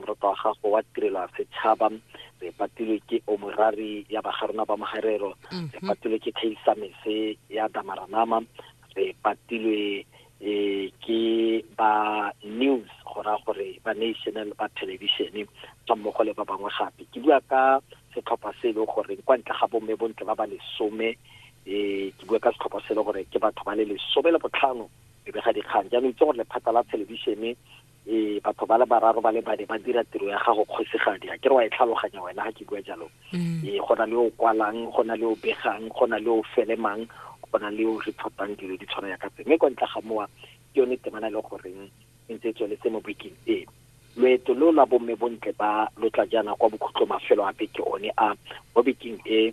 Morata wa gago wa tirelo ya setšhaba re patilwe ke omorari ya bagarona ba mogarero re mhm. patilwe ke khaisamese ya damaranama re patilwe eh ke ba news go ra gore ba national ba television tsa mmogo le ba bangwe gape ke bua ka setlhopha se e leng gore kwa ntle ga bomme bontle ba ba lesome eh ke bua ka setlhopha se e leng gore ke batho ba le lesome le botlhano e be ga dikgang jaanong itse gore lephata la television Ee, batho ba le bararo ba le bane ba dira tiro ya gago kgosigadi a ke re wa e tlhaloganya wena ga ke bua jalo mm. ee go na le o kwalang go na le o begang go na le o felemang go na le o reportang dilo di tshwana ya ka tse mme kwa ntle ga mowa ke yone temana e le goreng e ntse e tsweletse mo bekeng ee loeto lo la bomme bontle ba lo tla jaana kwa bokhutlo mafelo a beke one a mo bekeng e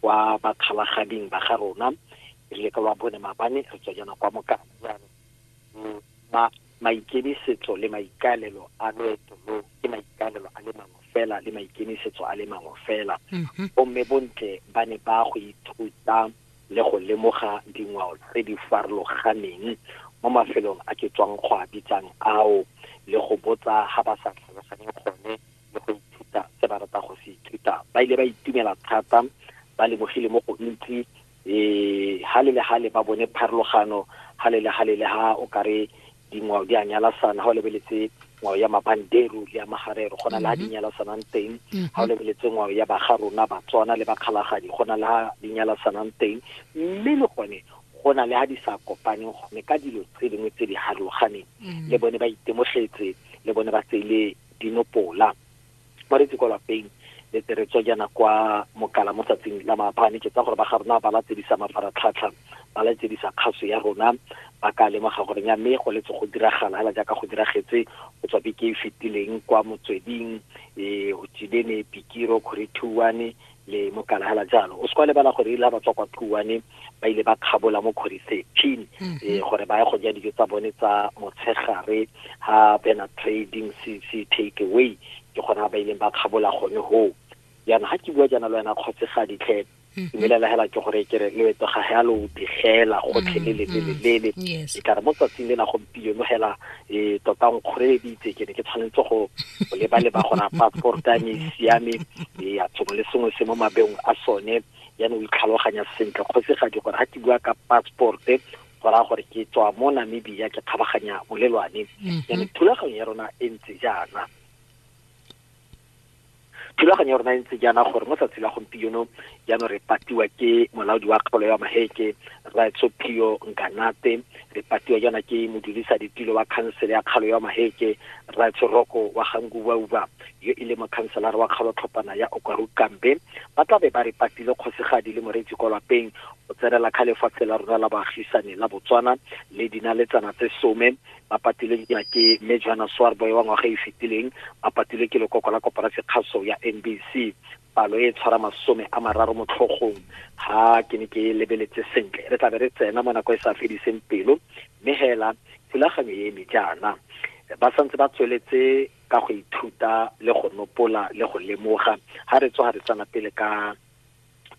kwa bakgalagading ba ga rona re le ka lwa bone mabane re tswa jaana kwa mokana jaanong ma maikemisetso le maikaelelo a loeto lo ke maikaelelo a le mangwe fela le maikemisetso a le mangwe fela bomme bontle ba ne ba go ithuta le go lemoga dingwao tse di farologaneng mo mafelong a ke tswang go a bitsang ao le go botsa ga ba sa tlhaloganye gone le go ithuta se ba rata go se ithuta ba ile ba itumela thata ba lebogile mo go ntsi um gale le gale ba bone pharologano gale le gale le ga o kare dingwao di a nyalasana ga o lebeletse ngwao ya mabanderu le ya magarero go na le ga di mhm. nyalasanang teng ga mhm. o lebeletse ngwao ya baga rona batswana le bakgalagadi go na le ga di nyalasanang teng mme le gone go na le ga di sa kopaneng gone ka dilo tse dingwe tse di harologaneng mhm. le bone ba itemogetse le bone ba tseile dinopola ba retse kwa lapeng le tere tswa jana kwa mokala mo tsatsing la maabane ke tsa gore ba ga rona ba latedisa mafaratlhatlha ba latedisa kgaso ya rona ba ka lemoga gore ya mme go letse go diragala hela jaaka go diragetse go tswa beke e fetileng kwa motsweding um e, o tsibene pikiro kgore thuane le mokala hela jalo o se kwa lebala gore ile ba tswa kwa phuwane ba ile ba kgabola mo kgwedi thirteen mm-hmm. eh, gore ba ye go ja dijo tsa bone tsa motshegare ha bena trading se take away ke gona ba ileng ba kgabola gone hoo jaana ga ke bua jaana le wena kgotse ga ditlhe mm-hmm. dumelela hela ke gore kere leeto ga ga lo digela gotlhe le lelelelele mm-hmm. e kare mo tsatsing le la gompieno hela e tota o nkgoreleditse ke ne ke tshwanetse go leba-leba gore a passport a ne e siame e a sengwe le sengwe se mo mabeong a sone yane o itlhaloganya sentle kgosegadi gore ga ke bua ka passport-e go raya gore ke tswa mo namibia ke kgabaganya bolelwane yane mhm. thulaganyo ya rona e ntse jaana thulaganyo ya rona e ntse jaana gore mo tsatsi la gompieno jaanong re patiwa ke molaodi wa kgaolo ya maheke raetsopio nkanate re patiwa jaana ke modulisa ditilo wa khansele ya kgalo ya maheke raetsoroko wa gangubauba yo e le mokhanselara wa kgalo tlhopana ya okwaru kambe ba tla be ba re patile kgosegadi le moreetsi kwa lapeng go tsenela kga lefatshe la rona la baagisane la botswana le dinaletsana tse some ba patilwe dina ke mme joana soarboy wa ngwaga e fetileng ba patilwe ke lekoko la koporasi kgaso ya mbc palo e tshwara masome a mararo mo tlhogong ha ke ne ke e lebeletse sentle re tlabe re tsena mo nako e sa fediseng pelo mme hela thulaganyo e eme jaana ba santse ba tsweletse ka go ithuta le go nopola le go lemoga ha re tswa ga re tsana pele ka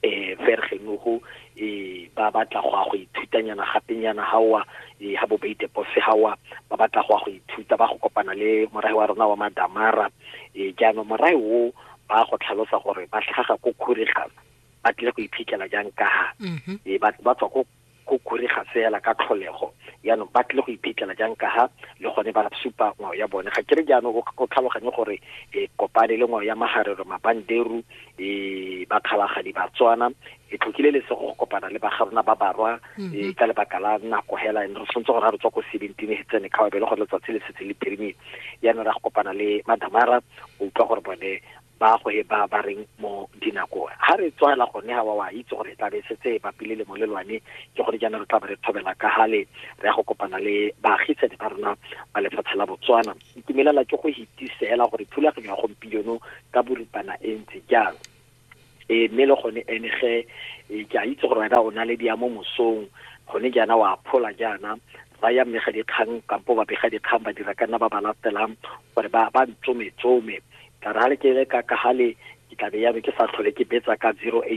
eh fergenugo eh ba batla go go ithutanyana gapenyana ha wa eh ha bo beite pose ha wa ba batla go go ithuta ba go kopana le morae wa rona wa madamara eh jaanong morae o ba go tlhalosa gore ba tlhaga ko khurigana ba tlile go iphitlhela jang ka ha mm-hmm. eh, ba tswa ko go kurega fela ka tlholego yaanong ba tlile go iphitlhela jang ka ha le gone ba supa ngwao ya bone ga kere jaanong o tlhaloganye gore e kopane le ngwao ya magarero mabanderu e bakgabagadi batswana e tlhokile le se go kopana le bagarona ba barwa mhm. e ka lebaka la nako hela re tshwanetse gore ga re tswa ko seventeen e tsene kgaobe le gore letsatsi le setse le pirimile yaanong ra go kopana le madamara o utlwa gore bone ba go he ba ba reng mo dinako ha re tswela gone ha wa wa itse gore tla be setse ba pile le molelwane ke gore jaana re tla re thobela ka hale re ya go kopana le baagisane ba rona ba lefatshe la Botswana itumelela ke go hitisela gore thulaganyo ya gompieno ka boripana e ntse jang e mme le gone ene ge ke a itse gore wena o na le diamo mosong gone jaana wa phola jaana ba ya mmega dikgang kampo ba bega dikgang ba dira ka nna ba ba latelang gore ba ba ntsometsome ka re ga le ke le ka ka gale ke tla be ya ke sa tlhole ke betsa ka 086